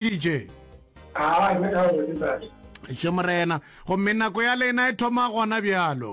dj. Aa, nna ka gore ke ntate. Še Morena, gomme nako ya lena e thoma gona bjalo.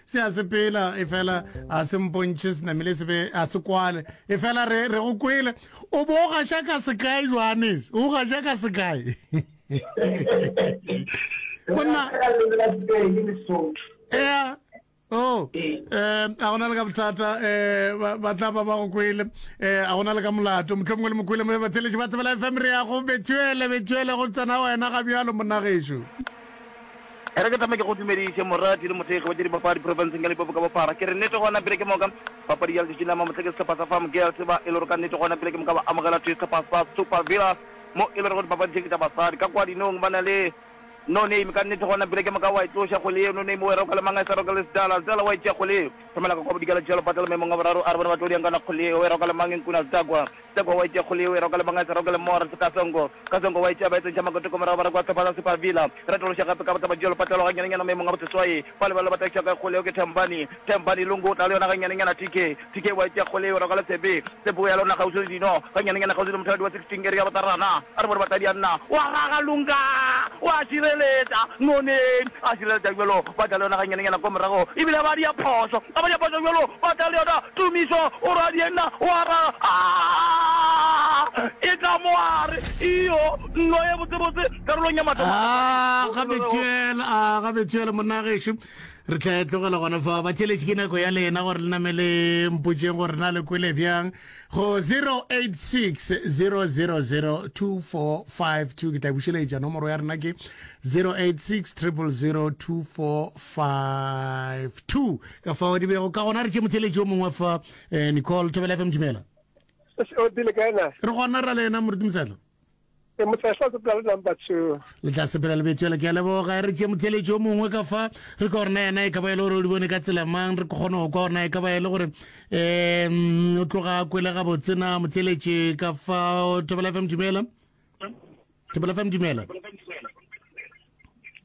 Se a sepela, efela a se mpontšhe, se namile se be a se kwale. Efela re, re go kwele. O bo o gaša ka sekae, Johannes? O gaša ka sekae? Monna. Ea. Oh, eh, a gona le ka bothata, eh, ba tla ba ba go kwele, eh, a gona le ka molato, motlho mongwe le mokwele mo ba theletše ba tsebela FM re ya go bethuele, bethuele go tsena wena ga bjalo monnagešu. E re ke thome ke go dumediše morati le mothekgi wa tša dipapadi profenseng ya Limpopo ka bophara. Ke re nnete gona pele ke moka papadi ya letšatši la mamohla ke sehlopha sa Farm Girls ba e le gore ka nnete gona pele ke moka ba amogela thwi sehlopha sa Super Villas mo e le gorego dipapadi tše ke tša basadi ka kwa dinong ba na le No Name ka nnete gona pele ke moka wa e tloša kgole yeo No Name wa e roka le mang a sa roka le Sdala Sdala wa e tšea kgole yeo thomela ka kwa bodikela tšea lopata le maemong a boraro a re bona ba tlo diang kana kgole yeo wa e roka le mang Nkuna Sdakwa Tseko wa itše kgole yeo e roka le banga e se roke le more se ka Tsongo ka Tsongo wa itše ba etsentšha makotoko morago ba re kwa Tlhophatsa Super Villa re tološe gape ka botaba bjalo patlelo ga nyanenyana maemong a boseswai fa lebelo ba takiša ka e kgole yeo ke Thembani Thembani Lungu tla le yona ga nyanenyana TK TK wa itše kgole yeo e roka le Tshepe Tshepe o ya le yona kgauswi le dino ga nyanenyana kgauswi le mothadi wa 16 area botarana A re bone basadi ya nna wa gaga lunka wa šireletša noneng a šireletša bjalo ba tla le yona ga nyane nyana ko morago e bile ba dia phošo a ba dia phošo bjalo ba tla le yona tumišo o ra di enna wa ra a e tla mo a re iyo nno ye botse botse karolong ya mathomo a ga bethuel a ga bethuel monna gešo re tla e tlogela gona fa ba tšeletše ke nako ya lena gore le namele mpotšeng gore na le kwele bjang go 0860002452 ke tla bušeletša nomoro ya rena ke 0860002452 ka fao di bego ka gona re tše motheletši o mongwe fa eh, nicole thobela fm dumela o dile ka ena re gona ra le ena moruti mosatla Ee, motla tla sepela le number two. Le tla sepela le betswela ke a leboga. Re tšee motheletši o mongwe ka fa re ka gorena yena e ka ba e le gore o di bone ka tsela mang re kgone go kwa gorena e ka ba e le gore um o tloga a kwele gabotsena motheletši ka fa thobela fm dumela thobela fm dumela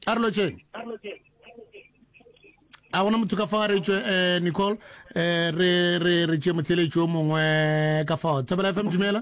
a re lotšheng a gona motho ka fa re tšwe eh, nicole eh, re re re tšee motheletši o mongwe ka fa thobela fm dumela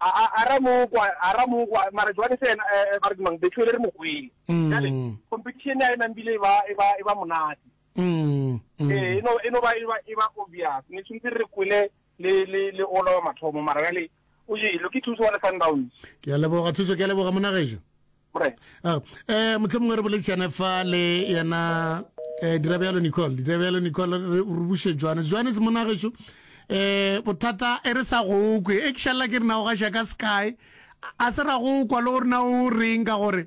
A, a, a ra mo kwa, a ra mo kwa, mara jwale se yena, eh, eh, ba re ke mang, Bethuele re mo kwele. Jwale, Mm. competition ya e nang bile e ba, e ba, e ba monate. Mm, Eh, mm. e no, e no ba, e ba, e ba obvious. Ne tshwantse re kwele le, le, le ola wa mathomo, mara jwale, o jele, ke thuso wa le Sundowns. ke a leboga thuso ke a leboga monagejo Ah, eh motlho mongwe re boletsane fa le yena eh dira bjalo nicole dira bjalo nicole re buse jwane jwane se monageso eh bothata e re sa go kwe e kshalla ke rena o ga shaka sky a se ra go kwa le gore na o reng ka gore